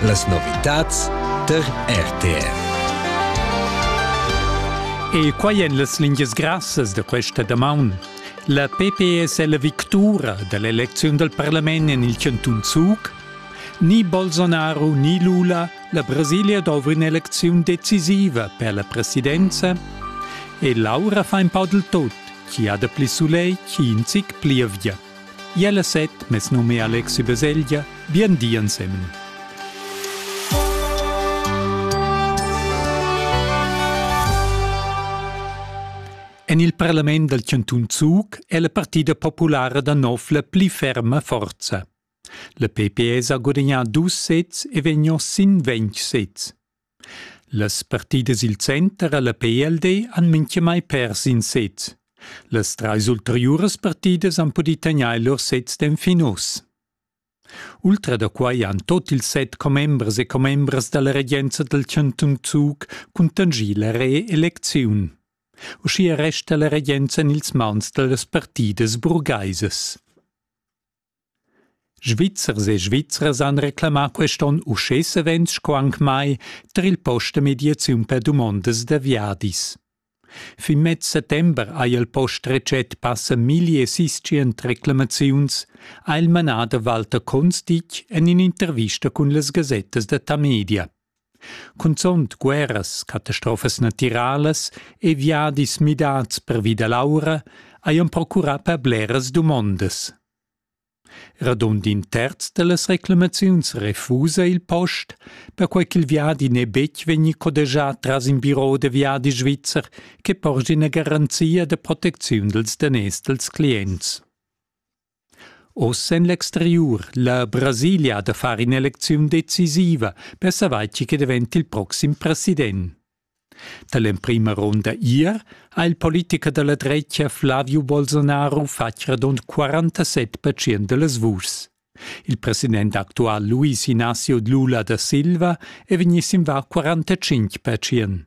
Las novitads tar RTR. E quai èn las lingias grassas da questa damaun. La PPS è la victura da l'elecziun dal parlament en il chantun Zug. Ni Bolsonaro ni Lula, la Brasilia dovra in'elecziun decisiva per la presidenza. E l'aura fa in po del tot, chi ha da pli sulegl, chi in zic pli avia. Iel e set, mes num è Alexi Baselgia, bien di ensemen. En il parlament dal Cantun Zug è la partida populara da nov la pli ferma forza. La PPS ha gudagnà dus sets e vegnià sin ventg sets. Las partidas il center a la PLD han mintgamai pers in set. Las trais ulteriuras partidas han pudì tegnair lur sets d'enfin oz. Ultra da quai han tot ils set commembers e commembras da la regenza dal chantun Zug cuntanschì la reelecziun. Uschia resta la regenza en ils mauns da las partidas burgaisas. Svizzers e Svizras han reclamà quest onn uschè savens sco anc mai tar il post da mediaziun per dumondas da viadis. Fin mez settember ha il post retschet passa milli e siscient reclamaziuns, ha il manader Walter Konstig en in'intervista cun las gasettas da Tamedia. Cunzont guerras, catastrofas natiralas e viadis midads pervi da l'aura hajan procurà per bleras dumondas. Radund in terz da las reclamaziuns refusa il post, perquai ch'il viadi n'è betg vegnì codegià tras in biro da viadi svizzer che porscha ina garanzia da protecziun dals daners dals clients. Oz en l'exteriur la Brasilia da far in'elecziun decisiva per savair tgi che daventa il proxim president. Da l'emprima ronda ier ha il politicher da la drecia Flavio Bolsonaro fatg radund 47% da las vuschs. Il president actual Luis Ignacio Lula da Silva è vegnì sin var 45%.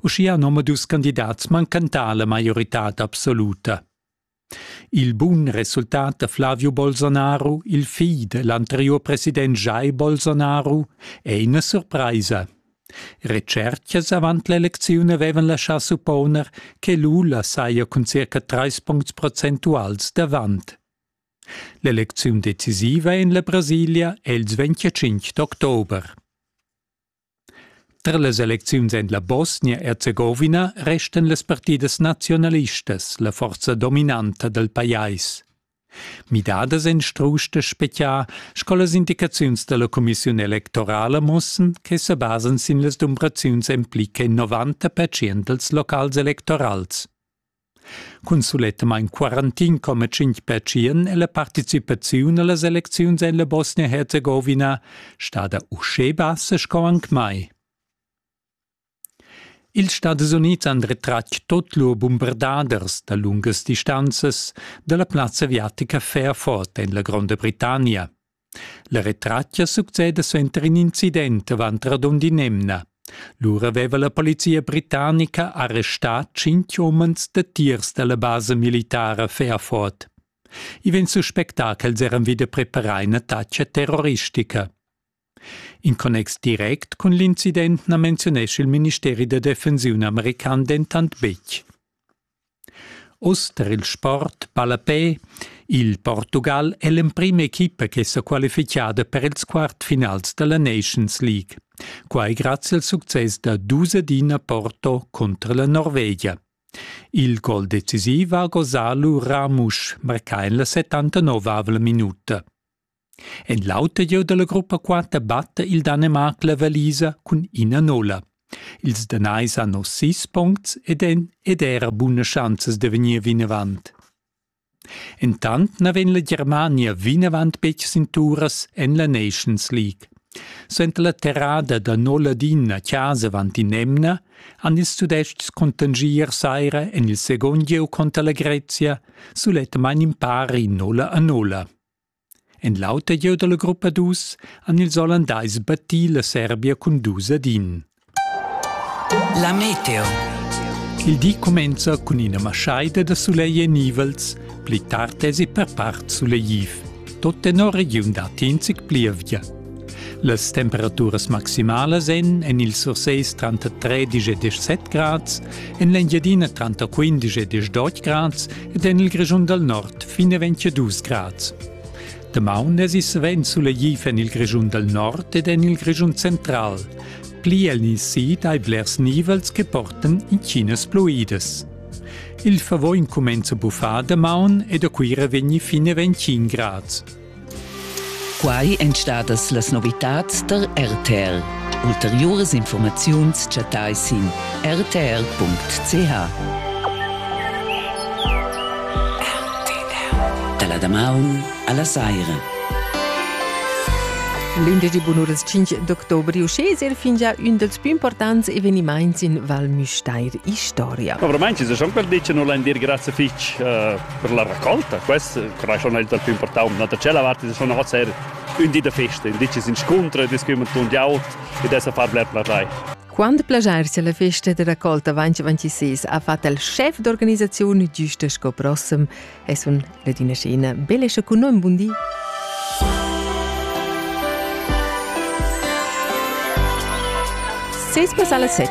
Uschia han omadus candidats mancantà la maioritad absoluta. Il bun resultat da Flavio Bolsonaro, il figl dell'anteriur president Jair Bolsonaro, è ina surpraisa. Retschertgas avant l'elecziun avevan laschà supponer che Lula saja cun circa trais puncts procentuals davant. L'elecziun decisiva en la Brasilia è il 25 d'october. Tar las elecziuns en la Bosnia-Erzegovina restan las partidas naziunalistas la forza dominanta dal pajais. Midadas en strusch da speziar sco las indicaziuns da la cumissiun electorala mussan che sa basan sin las dumbraziuns en pli che 90% dals locals electorals. Cun sulettamain quarantin coma tschintg pertschien è la participaziun a las elecziuns en la Bosnia-Herzegowina stada uschè bassa sco anc mai. Ils Stadis Unids han retratg tut lur bumbardaders da lungas distanzas da la plazza aviatica Fairford en la Gronda Britannia. La retratga succeda suenter in incident avant radund in'emna. Lura aveva la polizia britannica arrestà tschintg umens datiers da la basa militara Fairford. I vegn suspectà ch'els eran vida preparà in attacca terroristica. In connex direct cun l'incident na menziunescha il ministeri da defensiun american dentant betg. Uss tar il sport ballapè. Il Portugal è l'emprima equipa ch'è sa qualifichada per ils quartfinals da la Nations League. Quai grazie al success da dus ad ina Porto cunter la Norvegia. Il gol decisiv ha gosà lu Ramusch, marcà en la 79-avla minuta. En l'auter gieu dalla gruppa quater batta il Danemarc la valisa cun ina nola. Ils Danais han oz sis puncts ed en ed era buna schanzas da vegnir vinavant. Entant na vegn la Germania vinavant betg sin turas en la Nations League. Senta la terrada da Noladin a casa avant in emna han ils Tudestgs contangier saira en il second gieu conter la Grezia sulet main in pari nola a nola. En l'auter jeu dalla gruppa dus han ils Ollandais battì la Serbia cun dus ad in. La meteo. Il di cumenza cun ina maschaida da sulegl e nivels, pli tard esi per part sulegliv. Tot tenor regiun dat enzic plievgia. Las temperaturas maximalas en en il Surseis tranter 13 e 17 grads, en l'Engiadina tranter 15 e 18 grads ed en il Grischun dal Nord fin e 22 grads. Damaun es is vent sulegliv en il Grischun dal Nord ed en il Grischun central, pli el ni si dai blers nivels che portan in Chinas pluides. Il favò incumenza buffà damaun ed a Cuira vegni fin e 25 grads. Quai èn stadas las novitads tar RTL. Ulteriuras informaziuns chattai sin rtr.ch. Da la damaun a la saira. L'indigi bunuras 5 d'october uschesir fingia ün dels più importants evenimaints in Val Müstair Historia. Obramain ci sono per dire non l'andir grazie fich uh, Per la raccolta, quest curasch non è il più important, ma da tschella vart è schon noch sehr ün di da festa, ün di che s'inscuntra, discuomen tundiaut ed es a far bler plagiar. Quando plagiar se la festa de raccolta 2026 ha fatto il chef d'organizzazione giusta sco prossim, es un Ladina Scena. Belle e con noi, buon dì! Seis pass alla 7.